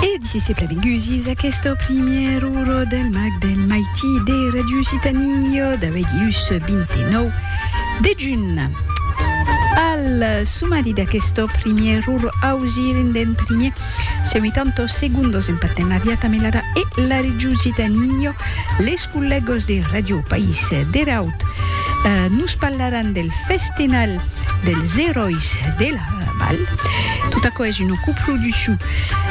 E dicisse plavengusis aqueste primièr uro del mag del maití de Radio Citanio d'aveigh ius 29 de junh. Al sumari d'aqueste primièr uro ausiren d'en primièr se 80 segundos en partenariat amb l'ADA e la Radio Citanio les collègos de Radio País deraut. Nos parlaràn del Festinal dels Eròis de la Val. Tot aquò es una coproduccion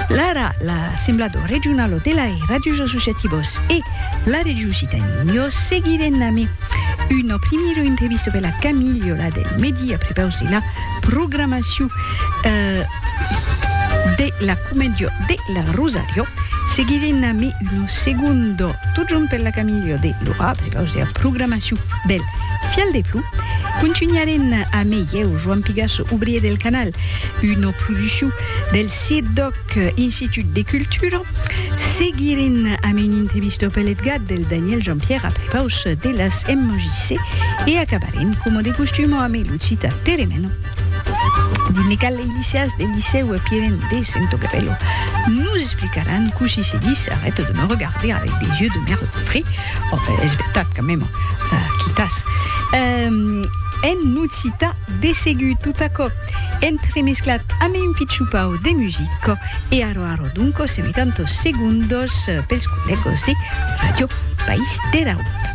lara l'Assemblado Regionalo de lai Radios Associativos e la Region Occitanie. Jo seguirè name una primira entrevista per la Camilio la del medi a prepaus de la programacion de la Comedia de la Rosario. Seguirè name una segonda totjorn per la Camilio de l'ora a prepaus de la programacion del Fial de plou, contunharem a mei eu, Joan Pigasso, obrier del canal, una produccion del CIRDOC, Institut de Cultura. Seguirem amb una entrevista pel EDGAT del Daniel Jean-Pierre a prepaus de las MJC e acabarem, coma de costum, amb lo citat Teremeno dins le cal eilicias del Licèu Piren de Sentocapello. Nos explicaràn cossí se dis arrête de me regarder avec des yeux de merlan frit, Òc, es vertat, quand même, quitas. En Nocità, de segur, tot aquò entremesclat amb un pichupau de musica e aro aro donco se metan tos segundos pels collègos de Ràdio País der Aüt.